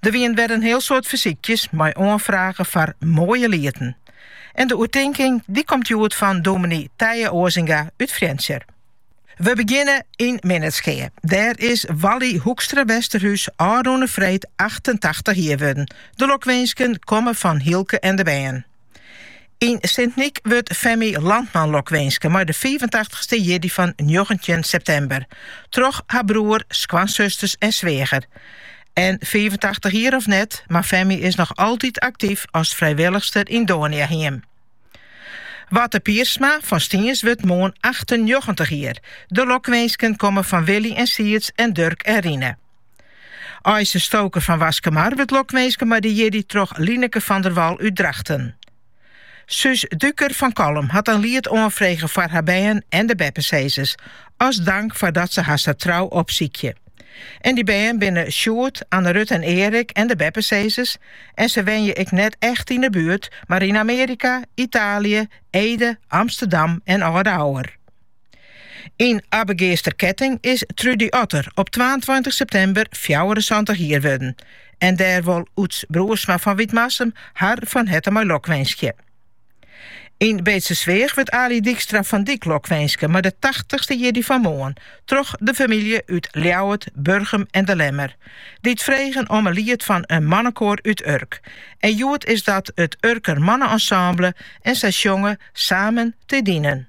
Der wienen wer in heel soad fersykjes mei oanfragen foar moaie lieten. En de oertinking die komt hjoed fan dominee Tije Osinga út Frjentsjer. Wy begjinne yn Minnertsgea. Dêr is Wally Hoekstra-Westerhuis ôfrûne freed 88 jier wurden. De lokwinsken komme fan Hylke en de bern. Yn Sint-Nyk wurdt Femi Landman lokwinske mei de 85ste jierdei fan njoggentjin septimber, troch har broer, skoansusters en sweager. En 85 jier of net, mar Femi is noch altyd aktyf as frijwillichster yn Doniahiem. Watte Piersma fan Stiens wurdt moarn 98 jier. De lokwinsken komme fan Willy en Siets en Durk en Rine. Eise Stoker fan Waskemar wurdt lokwinske mei de jierdei troch Lineke van der Wal út Drachten. Suus Duker fan Kollum hat in liet oanfrege foar har bern en de beppesizzers, as dank foar dat se har sa trou opsykje. En dy bern binne Sjoerd, Anne-Ruth en Erik en de beppesizzers en se wenje ek net echt yn de buert, mar yn Amearika, Italië, Ede, Amsterdam en Aldegou. Yn Abbegeaster Ketting is Trudy Otter op twaentweintich septimber fjouwerensantich jier wurden en dêr wol Oeds Broersma fan Wytmarsum har fan herte mei lokwinskje. Yn Beetstersweach wurdt Alie Dykstra-van Dyk lokwinske mei de tachtichste jierdei fan moarn troch de famylje út Ljouwert, Burgum en De Lemmer, dy't fregen om in liet fan in mannekoar út Urk. En hjoed is dat it Urker Manne-Ensemble en sy sjonge Samen te dienen.